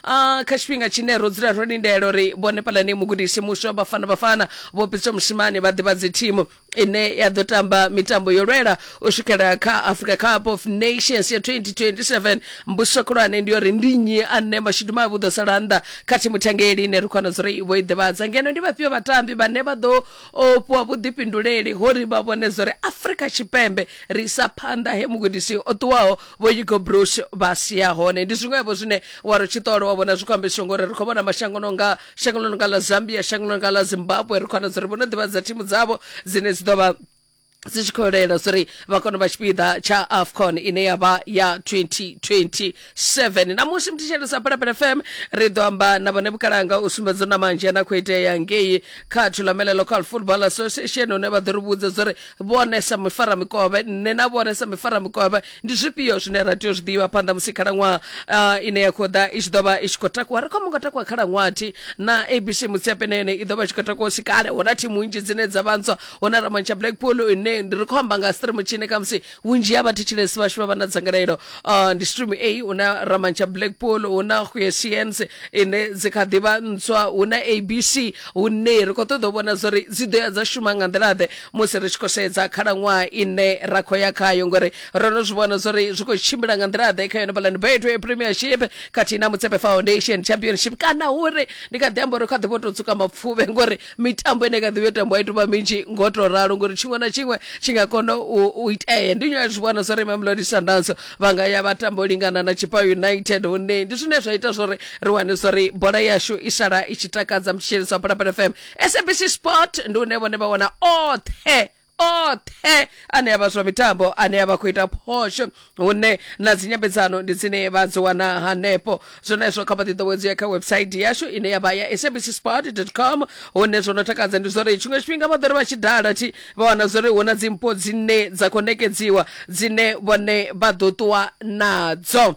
a kha tshifhinga tshine ro dzula ro lindela uri vhone phalane mugudisi muswa vhafana vhafana vho pitswa mushimane vha ḓivhadze thimu ine ya ḓo tamba mitambo yo lwela u swikela kha africa cup of nations ya 2027 mbuso khulwane ndi uri ndi nnyi ane mashudu mavhi u ḓo sala nnḓa kha thimu thangeli ine ri khona dzuri vho i ḓivhadza ngeno ndi vhafhio vhatambi vhane vha ḓo o, fhiwa vhuḓifhinduleli ho ri vha vhone dzuri afrika tshipembe ri isa phanḓa he mugudisi o ṱuwaho vho hugo brush vha sia hone ndi zwiṅwevho zwine wa ri tshi ṱola wa vhona zwi khou ambeswa ngori ri khou vhona mashango no nga shango ḽo no nga ḽa zambia shango ḽo no nga ḽa zimbabwe ri khou wana dzi ri vhono ḓivha dza thimu dzavho dzine dzi ḓo vha dzi tshi khou lela uri vha kone u vha tshipiḓa tsha afcon ine ya vha ya 2027 namusi mthishelo sa phalaphala fm ri ḓo amba na vhone vhukalanga u sumbedza na manzhi ana khou itea ngei kha thulamela local football association hune vha ḓo ri vhudza zwa uri vhone sa mifaramikovhe nṋe na vhone sa mifaramikovhe ndi zwifhio zwine ra tea u zwi ḓivha phanḓa musi khalaṅwaha uh, ine ya khou ḓa i tshi ḓo vha i tshi khou takuwa ri khou mungo takuwa khalaṅwaha thi na abc mutsiape na yone i ḓo vha i tshi khou takuwa u si kale hu na thimu nnzhi dzine dza vha ntswa hu na ramantsha blackpool ine ndi ri khou amba nga stream tshine khamusi vhunzhi ha vhathetshelesi vhashu vha vha na dzangalelo uh, ndi stream a hu na ramantsha blackpool hu na huesiens ine dzi kha ḓi vha ntswa hu na abc hune ri khou ṱoḓa u vhona zwa uri dzi ḓo ya dza shuma nga nḓila ḓe musi ri tshi khou sedza khalaṅwaha ine ra khou ya khayo ngori ro no zwi vhona zwo ri zwi khou tshimbila nga nḓila ḓe kha yone balani betway premiership khathihi na mutsepe foundation championship kana hure ndi kha ḓi amba uri kha ḓi vho tou tsuka mapfuvhe ngori mitambo ine kha ḓi vho tambo a i tou vha minzhi ngo tou ralo ngori tshiṅwe na tshiṅwe tshi nga kona u itea ndi nyo zwi vhona zwo ri mamelodi sundowns vha nga ya vha tambo lingana na chipa united hune ndi zwine zwa ita zwo ri ri wane zwo ri bola yashu i sala i tshi takadza mutshitsheliso wa phalaphala fm sabc sport ndi une vhone vha wana oṱhe oṱhe ane avha zwa mitambo ane avha khou ita phosho hune na dzinyambedzano ndi dzine vha dzi wana hanefho zwenezwo kha vhaḓiḓowedzi ya kha website yashu ine yavha ya sabc sport com hune zwo no takadza ndi zwori tshiṅwe tshifhinga vha ḓori vha tshi dala thi vha wana zwori hu na dzimpho dzine dza khou nekedziwa dzine vhone vha ḓo ṱuwa nadzo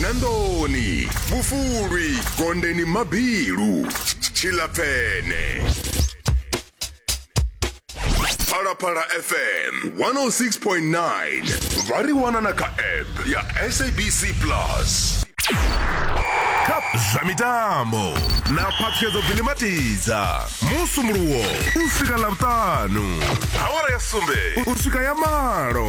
nandoni vhufulwi gondeni mabilu tshilapfene phalaphala fm 106.9 vha ri wana na kha app ya sabc plus kha zwa mitambo na phaṱhuyedzo bilimatidza musumuluwo u swika ḽavhutanu awara ya sumbe u swika ya malo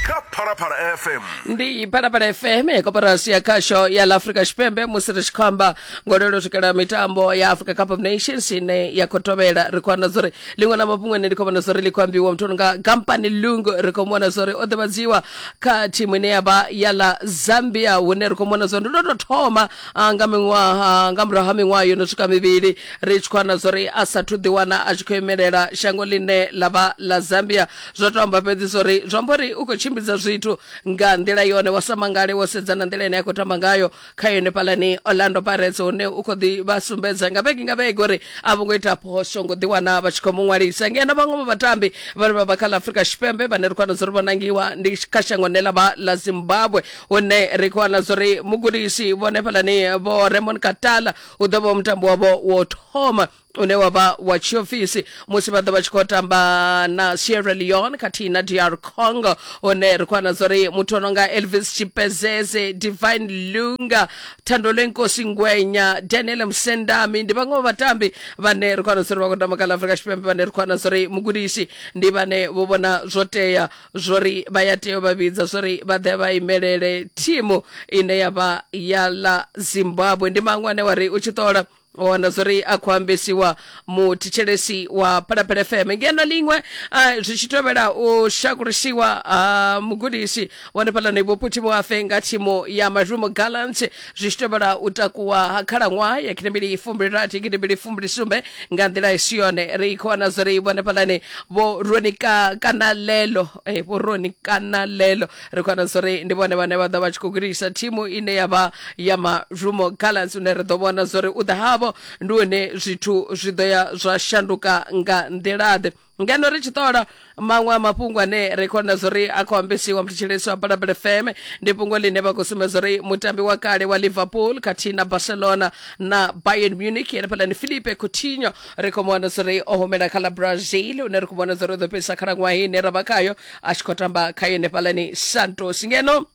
kha phalaphala fm ndi phalaphala fm koporasi ya khasho ya la afrika tshipembe musi ri tshi khou amba ngo lelo swikela mitambo ya africa cup of nations ine ya khou tovhela ri khou wana zwa uri ḽiṅwe na mafhungo ane ri khou vhona zwa uri ḽi khou ambiwa muthu nga gampani lung ri khou vhona zwa uri o ḓivhadziwa kha thimu ine ya vha ya la zambia hune ri khou vhona zwa uri ndo tou thoma a nga miṅwaha nga murahu ha miṅwaha yo no swika mivhili ri tshi khou ana zwa uri a sathu ḓiwana a tshi khou imelela shango ḽine ḽa vha ḽa zambia zwa to amba fhedzi zwa uri zwi amba uri u khou tshimbidza zwithu nga nḓila yone wa sa mangale wo sedza na nḓila ine a khou tamba ngayo kha yone fhalani orlando pirates hune u khou ḓi vha sumbedza nga vhege nga vhege uri a vho ngo ita phosho ngo ḓiwana vha tshi khou mu ṅwalisa ngeno vhaṅwe vha vhatambi vhane vha vha kha ḽa afurika tshipembe vhane ri khou ana zwa uri vho nangiwa ndi kha shango ne ḽa vha ḽa zimbabwe hune ri khou wana zwo ri mugudisi vhone fhalani vho remon katala u ḓo vha mutambo wavho wo thoma une wa vha wa tshiofisi musi vha ḓo vha tshi khou tamba na sierra leone khathihi na dr congo hune ri khou wana zwo ri muthu o no nga elvis tshipezeze divine lunga thandole nkosi ngwenya daniel msendami ndi vhaṅwe vha vhatambi vhane ri khou wana zwo ri vha khou tamba kha la afrika tshipembe vhane ri khou wana zwo ri mugudisi ndi vhane vho vhona zwo tea zwori vha ya tea u vha vhidza zwori vha ḓe vha imelele thimu ine ya vha ya ḽa zimbabwe ndi maṅwe ane wa ri u tshi ṱola wa wana zwori a khou ambesiwa muthetshelesi wa phalaphala fm ngeno ḽiṅwe ah, zwi tshi tovhela u shakulisiwa ha mugudisi wa hanefhaḽani vhophuthi vhoafe nga thimu ya marumo gallant zwi tshi tevhela u takuwa ha khalaṅwaha ya gidimbili fumbili-rathi gidimbili fumbili-sumbe nga nḓila i si yone ri khou wana zwo ri vhone fhaḽani vho roni ka kana lelo eh, vho roni kana lelo ri khou wana zwo ri ndi vhone vhane vha ḓo vha tshi khou gudisa thimu ine ya vha ya mazhumo gallants une ri ḓo vhona zwo ri u ḓa havho ndi hone zwithu zwi ḓo ya zwa shanduka nga nḓilaḓe ngeno ri tshi ṱola maṅwe a mafhungo ane ri khou na zwo ri a khou ambesiwa mthetshelesi wa balabala fm ndi fhungo ḽine vha khou sumbedza uri mutambi wa kale wa liverpool khathihi na barcelona na bayern munich ene fhalani philipe coutinho ri khou mu wana zwo ri o humela kha ḽa brazil une ri khou vhona zwo ri o ḓo fhedzisa khalaṅwaha ine ra vha khayo a tshi khou tamba kha yone fhalani santos ngeno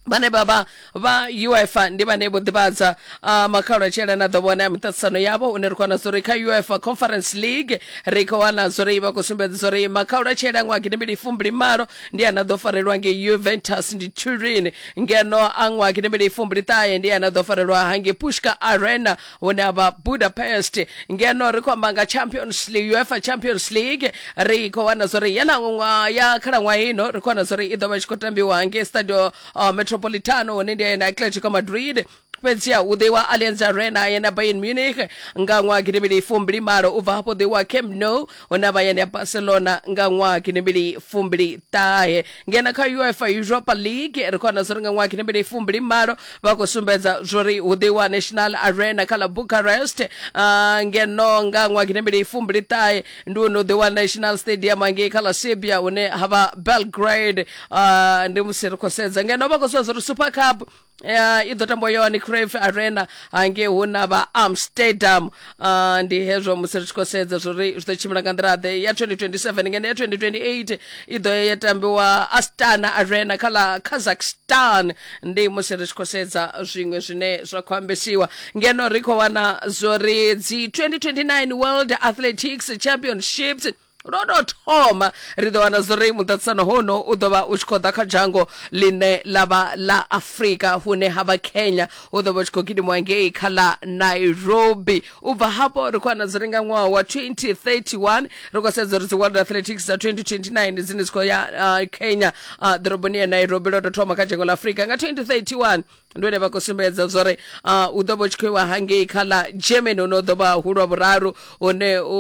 vhane vha vha vha uefa ndi vhane vho ḓivhadza uh, makhalo a tshielana ḓo vhona ya miṱaṱisano yavho une ri khou wana zwa uri kha uefa conference league ri khou wana zwa uri vha khou sumbedza zwa uri makhalo a tshiela ṅwaha gidimbili fumbili malo ndi ana ḓo farelwa nge juventus ndi turin ngeno a ṅwaha gidimbili fumbili ṱahe ndi ana ḓo farelwa hange pushka arena hune avha budapest ngeno ri khou amba nga champions league uefa champions league ri khou wana zwa uri yeḽa ṅwaha ya khalaṅwaha ino ri khou wana zwa uri i ḓo vha i tshi khou tambiwa ngei stadio uh, metropolitano hune ndi na atletico madrid fhedziha u ḓiwa allianz arena yena bayern munich nga ṅwaha gidimili fumbili malo u bva hafho ḓiwa camp nou hona vha ya ndi ya barcelona nga ṅwaha kinembili fumbili ṱahe ngena kha uefa europa league ri khou wana zwo ri nga ṅwaha kinembili fumbili malo vha khou sumbedza zwo ri hu ḓiwa national arena kha ḽa bucharest uh, ngeno nga ṅwaha kinembili fumbili ṱahe ndi hune u ḓiwa national stadium angei kha ḽa serbia hune ha vha belgrade uh, ndi musi ri khou sedza ngeno vha khou suwa zwo ri super cup ya i ḓo tambwa yohane crave arena hangei hu na vha amsterdam uh, ndi hezwo musi ri tshi khou sedza zwori zwi ḓo tshimbila nga nḓila ḓe ya 2027 ngeno ya 2028 i ḓo ya ya tambiwa astana arena kha ḽa kazakhstan ndi musi ri tshi khou sedza zwiṅwe zwine zwa khou ambesiwa ngeno ri khou wana zwori dzi 2029 world athletics championships lwo tou thoma ri ḓo wana zwori muṱaṱisano hono u ḓo vha u tshi khou ḓa kha dzhango ḽine ḽa vha ḽa afurika hune ha vha kenya u ḓo vha u tshi khou gidimiwa ngei kha ḽa nairobi u bva hafho ri khou wana zwori nga ṅwaha wa 2031 ri khou sedza uri dzi world athletics dza 2029 dzine dzi khou ya uh, kenya uh, ḓoroboni ya nairobi lwo tou thoma kha dzhango ḽa afurika nga 2031 ndi hone vha khou sumbedza zwa uri ah, u ḓo vha u tshi khou iwa hangei kha ḽa german hune u ḓo vha hu lwa vhuraru hune u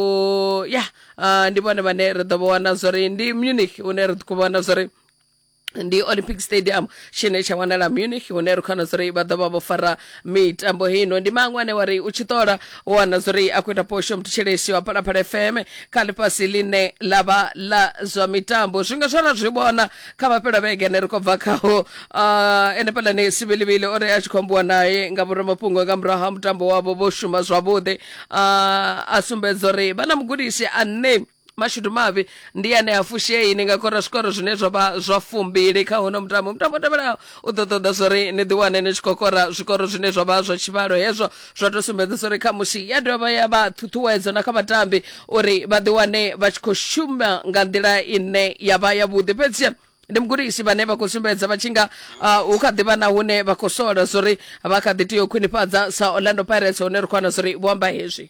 ya ah, ndi vhone vhane ri ḓo vha wana zwa uri ndi munich hune ri khou vhona zwa uri ndi olympic stadium tshine tsha wanala munich hune ri khona zuri vha ḓovha vho fara mitambo hino ndi maṅwe ane wa ri u tshi ṱola u wana zuri a khou ita posho muthetsheleshi wa phalaphala fm kha ḽifhasi ḽine ḽa vha ḽa zwa mitambo zwinga zwara zwi vhona kha vha fhela vhege ane ri khou bva khaho uh, ene phalani sivhilivhili o ri a tshi khou ambiwa naye nga vhoramafhungo nga murahu ha mutambo wavho vho shuma zwavhuḓi uh, a sumbedza uri vha na mugudisi ane mashudu mavhi ndi ane a fushei ni nga kora zwikoro zwine zwa vha zwa fumbili kha hono mutambo mutambo tevhelaho U ḓo ṱoḓa zwa uri ni ḓiwane ni tshi khou kora zwikoro zwine zwa vha zwa tshivhalo hezwo zwa tou sumbedza zwa uri khamusi ya dovha ya vha ṱhuṱhuwedzo na kha vhatambi uri vha ḓiwane vha tshi khou shuma nga nḓila ine ya vha yavhuḓi fhedzi ndi mugudisi vhane vha khou sumbedza vha tshi nga uh, hu kha ḓivha na hune vha khou sola zwa uri vha kha ḓi tea u khwinifhadza sa orlando pirates hone ri khou wana zwa uri vho amba hezwi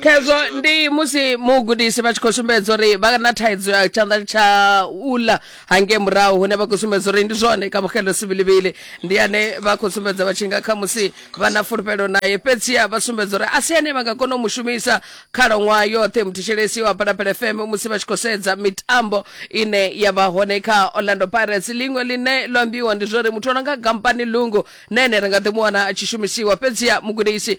khezwo ndi musi mugudisi vha tshi khou sumbedza uri vha na thaidzo ya tshanḓa tsha ula hangei murahu hune vha khou sumbedza uri ndi zwone kamogelo sivilivili ndi ane vha khou sumbedza vha tshi nga kha musi vha na fulufhelo naye fhedziha vha sumbedza uri a si ane vha nga kona u mu shumisa khalaṅwaha yoṱhe muthishelesi wa phalaphala fm musi vha tshi khou sedza mitambo ine ya vha hone kha orlando pirates liṅwe line lo ambiwa ndi zwa uri muthu o no nga gampani lungu na ene ri nga ḓi mu wana a tshi shumisiwa fhedziha mugudisi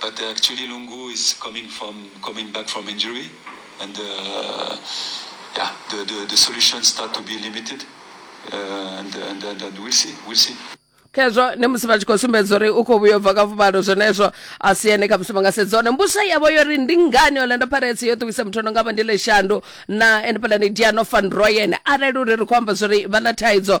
But uh, actually, Lungu is coming from coming back from injury, and uh, yeah, the, the, the solutions start to be limited, uh, and, and, and, and we'll see, we'll see. khezvo ndi musi vha tshi khou sumbedza uri u khou vhuya u bva kha fumalo zwenezwo a si ene kha musi vha nga sedza hone mbusa yavho yo ri ndi ngani orlando pirates yo ṱuwisa muthu ono nga vha ndi leshandu na ene pala ni diano van royen arali uri ri khou amba zwa uri vha na thaidzo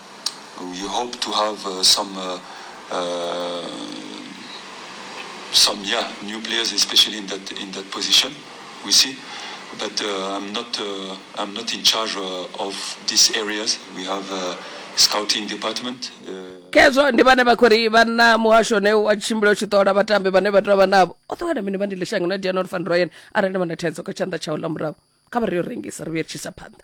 We hope to have some new players, especially in that position. We see. I'm not in charge of these areas. We have a scouting department. khezwo ndi vhane vha khou ri vha na muhasho une wa tshimbila u tshi ṱola vhatambi vhane vha tea vha navho o ṱowana mini vha ndi lishanga na dianor van royen arali vha na thaidzo kha tshanḓa tshawo ḽa murahu kha vha ri yo rengisa ri vhuyelitshisa phanḓa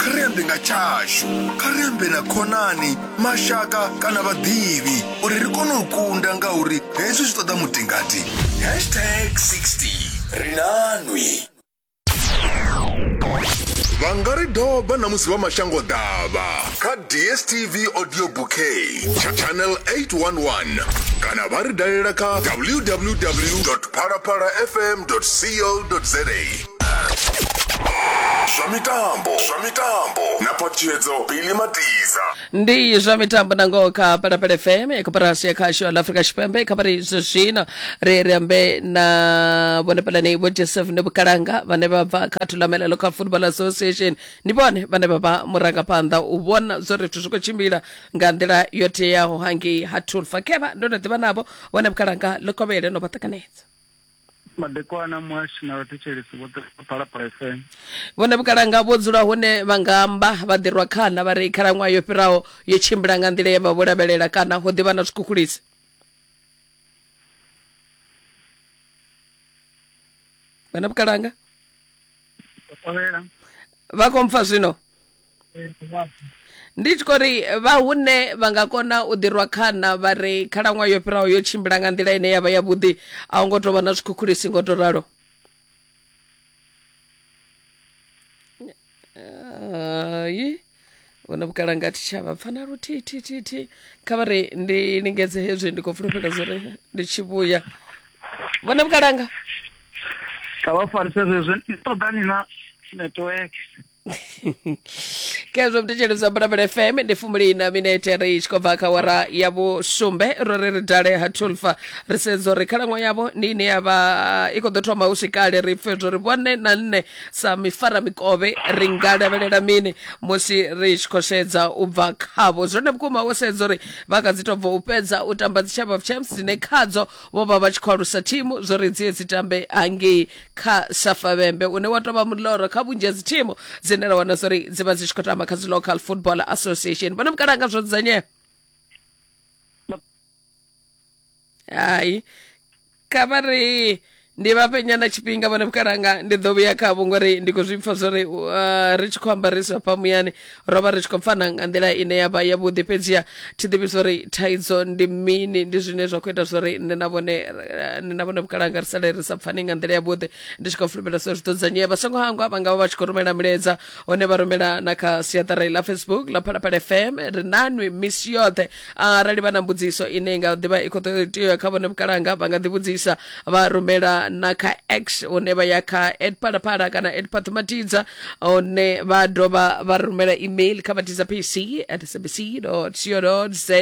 kha ri ambe nga tshashu kha ri ambe na khonani mashaka kana vhaḓivhi uri ri kone u kunda ngauri hezwi zwi ṱoḓa mutingati hashtag 60 ri nanwi vha nga ri doba na musi vha mashango ḓavha kha dstv audio bouquet tsha channel 811 kana vha ri dalela kha www phalaphalafm co za zwa mitambo zwa mitambo na phaṱhutshedzo bili matiza ndi zwa mitambo na ngoho kha palapala fm ya koporasi ya khasho la afrika tshipembe kha vhari zwo zwino ri ri ambe na vhone pulani vho joseph ne vhukalanga vhane vha bva kha thulamelelo kha football association ndi vhone vhane vha vha murangaphanḓa u vhona zwo ri zwithu zwi khou tshimbila nga nḓila yo teaho hangei ha tulfa khevha ndo no ḓivha navho vhone vhukalanga ḽo kovhele no vha ṱanganedza madekwana muhashi na vhathetshelesi vhoṱhe vha phalaphala fm vhone vhukalanga vho dzula hune vha nga amba vha ḓirwa khana vha ri khalaṅwaha yo fhiraho yo tshimbila nga nḓila ye vha vho lavhelela kana ho ḓivha na zwikhukhulisi vhone vhukalanga vha khou mpfa zwino ndi tshi khou ri vha hune vha nga kona u ḓirwa khana vha ri khalaṅwaha yo fhiraho yo tshimbila nga nḓila ine ya vha yavhuḓi a hu ngo tou vha na zwikhukhulisi ngo tou ralo hai hu na vhukalanga thi tsha vha pfana luthihi thi thi thi kha vha ri ndi lingedze hezwi ndi khou fulufhela zwo ri ndi tshi vhuya vhona vhukalanga kha vha farise zwezwo ndi ṱoḓani na network khezwo mthetsheledzwa mbalambala fm ndi fumuli na minete ri tshi khou bva kha wara ya vhusumbe ro ri ri dale ha tulfa ri sedza uri khalaṅwaha yavho ndi ine ya vha i khou ḓo thoma hu si kale ri pfe zwo ri vhone na nṋe sa mifara mikovhe ri nga lavhelela mini musi ri tshi khou sedza u bva khavho zwone vhukuma wo sedza uri vha kha dzi tou bva u fhedza u tamba dzi chamber of champs dzine khadzo vho vha vha tshi khou alusa thimu zwo ri dzie dzi tambe hangei kha safa vhembe une wa tovha muloro kha vhunzhi ha dzi thimu dzine ra wana zwori dzi vha dzi tshi khou tamba kha dzi local football association vhona mukalanga zwo dzudzanyea hai kha vha ri ndi vha fhe nyana tshifhinga vhone vhukalanga ndi ḓo vhuya khavho ngori ndi khou zwi pfa zwori uh, ri tshi khou ambariswa fha muyani ro vha ri tshi khou pfana nga nḓila ine ya vha yavhuḓi fhedziha thi ḓivhi zwo ri thaidzo ndi mini ndi zwine zwa khou ita zwo ri nṋe na vhone eh, nṋe na vhone vhukalanga ri sale ri sa pfani nga nḓila yavhuḓi ndi tshi khou fulufhela zwo zwi ḓo dzudzanyea vha songo hangwa vha nga vha vha tshi khou rumela milaedza hone vha rumela na kha siaṱari ḽa facebook ḽa phalaphala fm ri nanwi misi yoṱhe arali vha na mbudziso ine i nga ḓivha i khou ṱoḓa tea kha vhone vhukalanga vha nga ḓivhudzisa vha rumela na kha x hune vha ya kha at phalaphala kana at phaṱhumatidza hune vha dovha vha rumela email kha vhatidza pc at sabc co za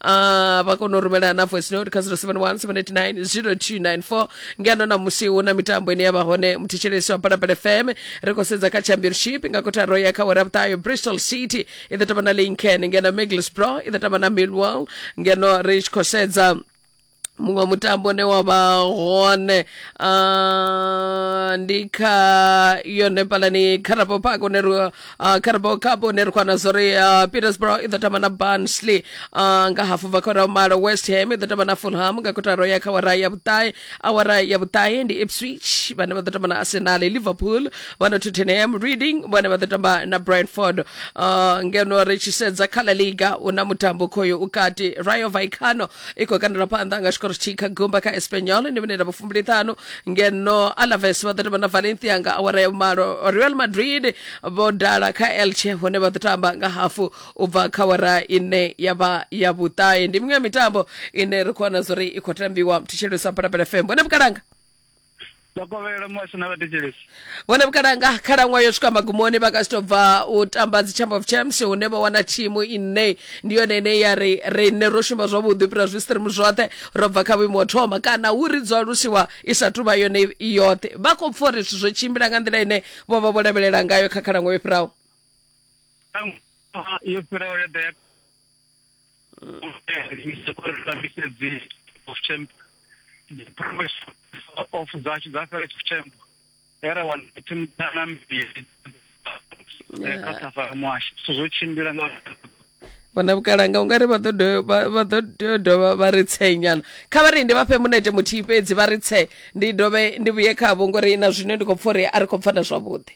uh, vha kona u rumela na voice note kha 071 789 0294 ngeno na musi hu na mitambo ine ya vha hone muthetshelesi wa phalaphala fm ri khou sedza kha championship nga kotaro ya kha wera vhuṱayo bristol city i ḓo tamba na lincoln ngeno middlesbrough i ḓo tamba na millwall ngeno ri tshi khou sedza muṅwe mutambo une wa vha hone ah, ndi kha yone palani carabo park une ri ah, carabo cup une ri khwana zwo ri ah, petersborough i ḓo tamba na barnsley ah, nga hafu bva kha ura ya malo west ham i ḓo tamba na fulham nga kotaro ya kha wara ya vhuṱae awara ya vhuṱahe ndi ipswich vhane vha ḓo tamba na arsenal liverpool vha na tottenham reading vhone vha ḓo tamba na brentford uh, ngeno ri tshi sedza kha la liga u na mutambo khoyo u kati rayo vaicano i khou kandela phanḓa nga tshikoro tshithihi kha gumba kha espanyol ndi mineta vhufumbiliṱhanu ngeno alaves vha ḓo tamba na valencia nga awara ya vhumalo real madrid vho dala kha elche hone vha ḓo tamba nga hafu u bva kha wara ine ya vha ya vhuṱahe ndi miṅwe ya mitambo ine ri khou wana zwo ri i khou tambiwa thetshelesa phalaphala fm vhone vhukalanga vhakovhela muhasho na vhathetshelesi vhone vhukalanga khalaṅwayo yo swika magumoni vha ka si tou bva u tamba dzi chamber of champs hune vha wana thimu ine ndi yone ine ya ri riṋe ro shuma zwavhuḓi u fhira zwi stream zwoṱhe ro bva kha vhuimo ho thoma kana hu ri dzwa lusiwa i sa tu vha yone i yoṱhe vha khou pfa uri zwithu zwo tshimbila nga nḓila ine vho vha vho lavhelela ngayo kha khalaṅwayo yo fhiraho yo fhiraho yo ḓa of zashu dza fhela tshipfembo era wana thimu dzana mbili kha safara muhasho so zwo tshimbila nga vhona vhukalanga ungari vha ḓo tea dovha vha ri tsee nyana kha vha ri ndi vha fhe munete muthihi fhedzi vha ri tsee ndi dovhe ndi vhuye khavho ngori na zwine ndi khou pfa uri a ri khou pfana zwavhuḓi